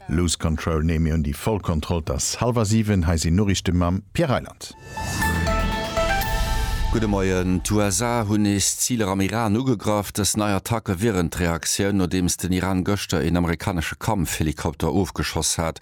Lose Control nee mir hunn déi voll Kontroll et ass hallwer 7 hei sinn Noriichte mam Pierre Reyland. Gudde Moien, D'USA hunn nees Ziler am Iran ugegraff. Dës nei Attacke wieren d'Reaktioun, nodeems den Iran gëschter een amerikanesche Kampfhelikopter ofgeschoss hat.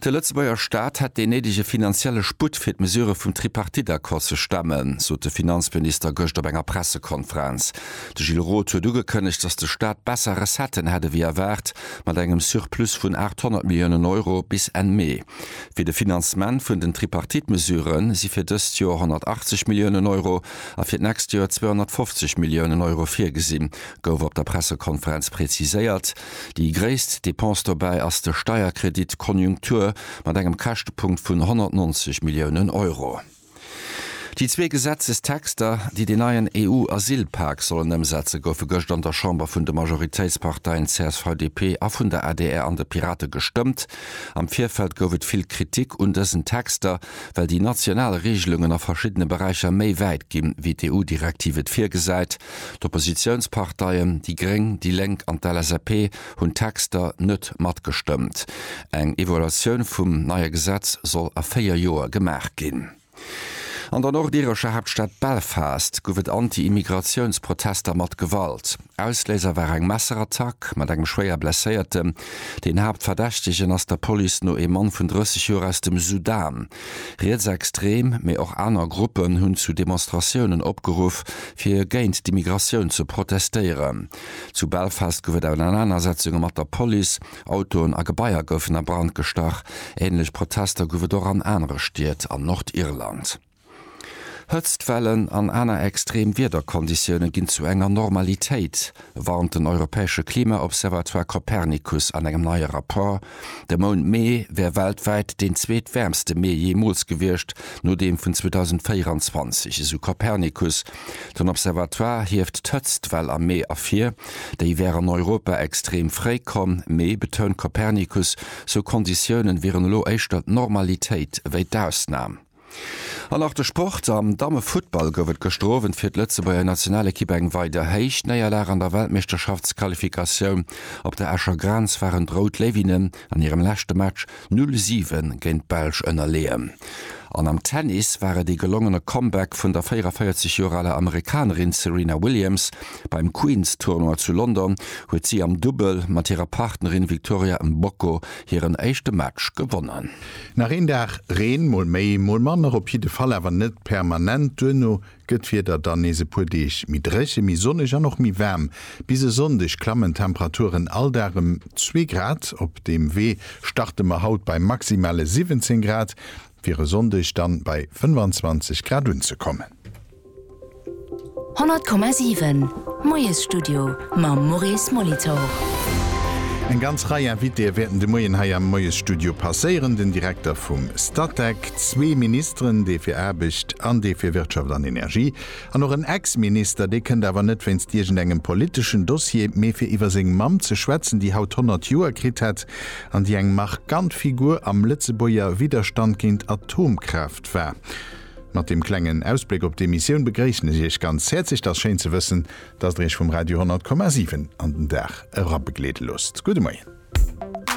De Lëtzebuerger Staat hätt deen néidege finanzielle Sputt fir d'Mesurë vum Tripartite-Accord ze stemmen, sot de Finanzminister gëscht op enger Pressekonferenz. De Gilles Roth huet ugekënnegt, datt de Staat besser Recetten hätt ewéi erwaart, mat engem Surplus vun 800 Milliounen Euro bis Enn Mee. Fir de Finanzement vun den Tripartite-Mesurë si fir dëst Joer 180 Milliounen Euro a fir d'nächst Joer 250 Milliounen Euro virgesinn, gouf op der Pressekonferenz preziséiert. Déi gréisst Depense dobäi ass de Steierkredit Konjunktur mat engem Käschtepunkt vun 190 Milliounen Euro. Déi zwee Gesetzestexter, déi deen neien EU-Asylpak sollen ëmsetze goufe gëscht an der Chamber vun de Majoritéitsparteien CSV-DP a vun der adr an de Pirate gestëmmt. Am Virfeld gouf et vill Kritik un dësen Texter, well déi national Reegelungen a verschiddene Beräicher méi wäit ginn, wéi d'EU-Direktiv et virgesäit. D'Oppositiounsparteien, déi Gréng, déi Lénk an d'LSAP, hunn d'Texter net matgestëmmt. Eng Evaluatioun vum neie Gesetz soll a véier Joer gemaach ginn. An der nordirescher Haaptstad Belfast gouf et Anti-Immigratiouns-Protester mat Gewalt. Ausléiser war eng Messerattack mat engem schwéier Blesséierten. Deen Haaptverdächtegen ass der Police no ee Mann vun 30 Joer aus dem Sudan. Rietsextrem, mee och aner Gruppen hunn zu Demonstratiounen opgeruff, fir géint d'Immigratioun ze protestéieren. Zu Belfast gouf et Ausernanersetzunge mat der Police, Autoen a Gebaier goufen a Brand gestach. Änlech Protester gouf et och an anere Stied an Nordirland. Hëtztwellen an aner extrem Wiederkonditioune ginn zu enger Normalitéit, warnt den europäesche Klima-Observatoire Copernicus an engem neie Rapport. De Mount Mee wär weltwäit deen zweet wäermste Mee jeemools gewiescht, no deem vun 2024, esou Copernicus. Den Observatoire hieft d'Hëtztwell am Mee ervir. Déi wär an Europa extrem fréi komm, mee, betount Copernicus, sou Konditioune wieren elo éischter d'Normalitéit ewéi d'Ausnam. An och de Sport, Am Dammefuttball gouf et gëschter Owend fir d'Lëtzebuerger Nationalekipp eng weider héich Néierlag an der Weltmeeschterschaftsqualifikatioun. Op der Escher Grenz waren d'Rout Léiwinnen an hirem leschte Match 0, 7 géint d'Belsch ënnerleeën. An am Tennis war et ee gelongene Comeback vun der 44 Joer aler Amerikanerin Serena Williams. Beim Queen's Tournoi zu London huet si am Dubbel mat hirer Partnerin Victoria Mboko hiren éischte Match gewonnen. Nach een Dag Reen, mol méi, mol manner, op jidde Fall awer net permanent. Duerno gëtt d'Wieder dann nees e puer Deeg méi dréche, méi sonneg an och méi waarm. Bis e Sonndeg klammen d'Temperaturen all Dag ëm zwee Grad. Op deem Wee starte mer haut bei maximale 17 Grad, fir e Sonndeg dann bei 25 Grad unzekommen. 100,7, Moiesstudio mam Maurice Molitor. Eng ganz Rei Invitéë wäerten de Moien hei am Moiesstudio passéieren, den Direkter vum Statec, zwee Ministeren, dee fir Aarbecht an dee fir Wirtschaft an Energie, an och en Ex-Minister. Dee kënnt awer net wéinst iergendengem politeschen Dossier, mee fir iwwer seng Mamm ze schwätzen, déi haut 100 Joer kritt hätt an déi eng markant Figur am Lëtzebuerger Widderstand géint Atomkraaft war. Mat deem klengen Ausbléck op d'Emissioun begréissen ech Iech ganz häerzlech. T'ass schéin ze wëssen, dass Der Iech vum Radio 100,7 an den Dag erabegleede loosst. Gudde Moien.